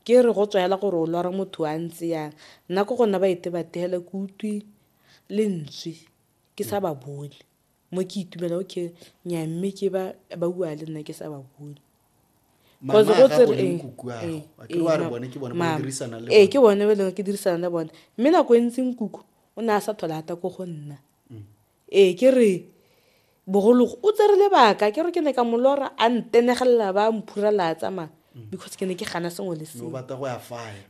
Ke re go tswa hela gore o lora motho a ntse yang, nna ko go nna ba itebathe hela ke utlwi lentswe ke sa ba bone mo ke itumela okay nyaa mme ke ba ba bua le nna ke sa ba bone Mama ya gago le nkuku ya gago, a ke re wa re bone ke bone ba o dirisana le ee bone. ke bone ba e leng gore ke dirisana le bone mme nako e ntsi nkuku o ne a sa thole ata ko go nna Ee, ke re bogologo o tsere lebaka ke re ke ne ka molora a ntenegelela ba mphurela a tsamaya mm. because ke ne ke gana sengwe le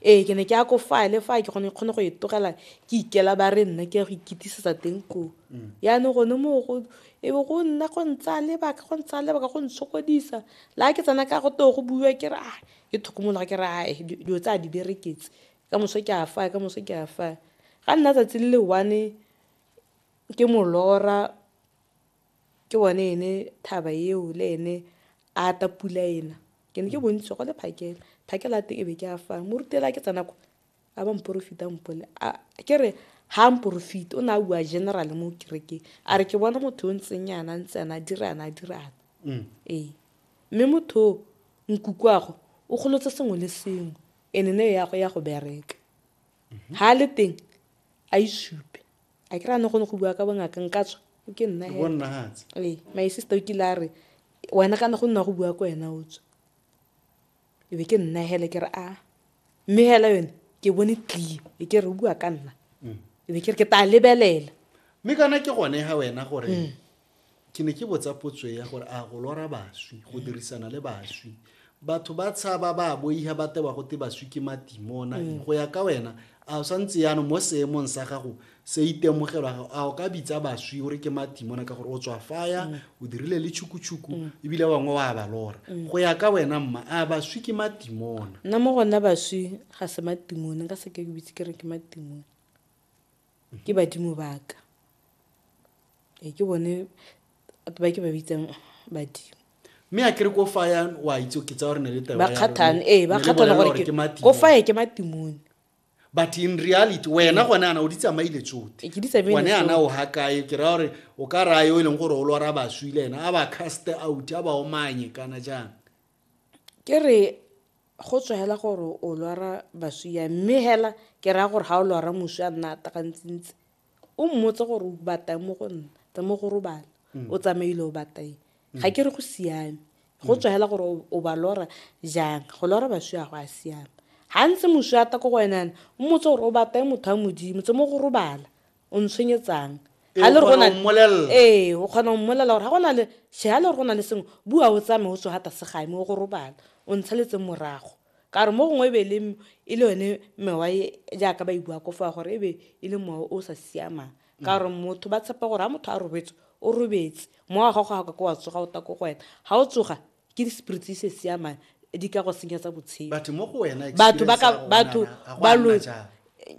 ee ke ne ke ya ko faya le faya ke gone kgone go e tlogela ke ikela ba re nna ke ya go ikitisetsa teng koo mm. yaanong gone moo go e be go nna go ntsaya lebaka go ntsaya lebaka go ntshokodisa la ke tsena ka go too go buiwa ke re a ah, ke tlhokomologa ke re ae ah, dilo tse a di bereketse ka moso ke a faya ka moso ke a faya ga nna tsatsi le le one Ke molora ke one ene thaba eo le ene a ta pula ena ke ne ke bontsi go le phakela phakela a teng e be ke a fang morutela ke tsena ko a ba mporofita mpole ke re ha mporofita o ne a bua general mo kerekeng a re ke bona motho o ntseng yana ntse ana dira ana dira ana mm. ee mme motho o nkukuago o golotse sengwe le sengwe ene ne ya go ya go bereka ha le teng a isupe a ke ra ne gone go bua ka bongaka nka tswa ke nna Ke bonna hatse. ee my sister o kile a re wena kana go nna go bua ko wena o tswa e be ke nna hele ke re a mme hela yone ke bone tlie e ke re o bua ka nna e be ke re ke tla lebelela mme kana ke gone ga wena gore Ke ne ke botsa potso ya gore a go lora baswi, go dirisana le baswi. Batho ba tshaba ba boiha ba tewa go te baswi ke matimona. Mm. Go ya ka wena, a o sa ntse yano mo seemong sa gago se itemogelwa gago, a o ka bitsa baswi o re ke matimona ka gore o tswa faya, mm. o dirile le tšhukutshuku, mm. ebile ba bangwe wa ba lora. Go ya ka wena mma, a baswi ke matimona? Nna mo gona baswi ga se matimona, ka se ke ke bitse ke re ke matimona. Ke badimo ba ka. Ee, ke bone batho ba ke ba bitsang badimo. mme a kere ko fa ya wa itse ke tsa gore ne le taba ba ya kgathane rona. ee ba Ne re kgathane bolela gore ke ke- matimo. ko faye ke matimone but in reality wena gone ana o di tsamaile tsote Ee, ke di tsamaile gone ana tsote. o ga kae ke raya gore o ka raya yo e leng gore o lora baswi le ena a ba caste out a ba omanye kana jang ke re Go tswa hela gore o lwara baswi yang, mme hela ke raya gore ga o lwara moswi a nna atakantsintsi, o mmotse gore o batang mo go nna, tsamaye go robala, o tsamaile o batang. Ga ke re go siame. Go tswa hela gore o ba lora jang. Go lora baswi a go a siama. Ga ntse moswi ata ko go wena yana, o mmotse gore o batang motho wa Modimo, tsamaye go robala. o ntshwenyetsang ga le gore ee o kgona go mmolelela gore ga gona le she ga le gore go na le sengwe bua o tsame o tswa gata segae mo go robala o ntshaletseng morago ka gore mo gongwe e be le e le yone mewa e, jaaka ba e bua ko fa gore e be e le mowa o sa siamang ka gore motho ba tshepa gore ga motho a robetse o robetse mowa wa gago ga ka ko wa tsoga o ta ko go wena ga o tsoga Ke di spirits se siama di ka go senyetsa botshelo. Batho mo go wena batho ba ka batho ba lo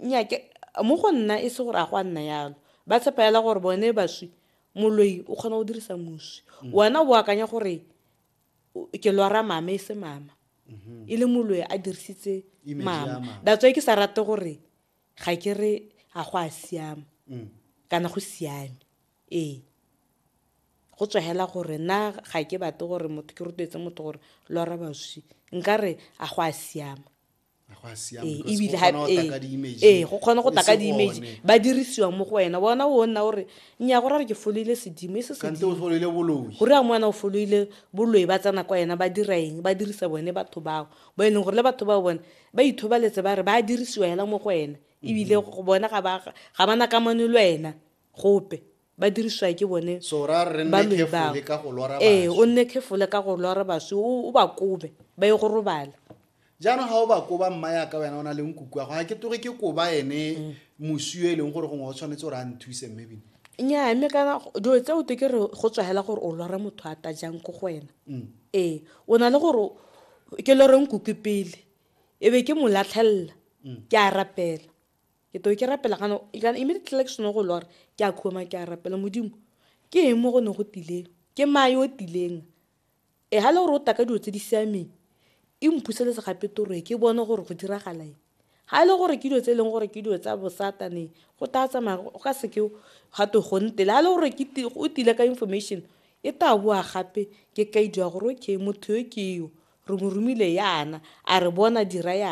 nya ke mo go nna e se gore a go a nna yalo ba tshepa yala gore bone baswi moloi o kgona go dirisa moswi mm. wena o akanya gore ke lwara mama e se mama mm-hmm. e le moloi a dirisitse mama datswa ke sa rate gore ga ke re ga go a siama mm. kana go siame Ee, go tswa hela gore na ga ke batle gore motho ke rotloetse motho gore lora baswi nkare a go a siama ebile ee go kgone go taka di-image ba dirisiwa mo go wena bona o nna gore nya go rare ke foloile sedimo e se sedimogore ya ngwana o foloile boloi ba tsena kwa ena ba dira eng ba dirisa bone batho bao bo e leng gore le batho bao bone ba ithobaletse ba re ba dirisiwa hela mo go wena ebile go bona ga ba na kamano le wena gope ba dirisiwa ke bone baloi bao ee o nne khefole ka go lora baswi o ba kobe ba ye go robala jaanong ga o ba koba mma yaka wena o na le nkuku ya go ga ke toge ke koba ene mm. moswi e leng gore gongwe o tshwanetse gore a nthuse mme bine nnyaa mme kana dilo tse o te ke re go tswagela gore o lora motho a tajang ko go wena mm. ee o na le gore ke lore nkuku pele e be ke mo latlhelela mm. ke a rapela ke to ke rapela kana kana immediately like sone go lora ke a khoma ke a rapela modimo ke eng mo go ne go tileng ke ma yo tileng e ha le gore o taka dilo tse di siameng e mphuseletse gape toro e ke bone gore go diragala eng ga e le gore ke dilo tse e leng gore ke dilo tsa bosatane go tla tsamaya go ka seke ga to go ntele ga e le gore o tile ka information e tla boa gape ke kaidi ya gore okay motho yo ke yo re mo romile yana a re bona dira yana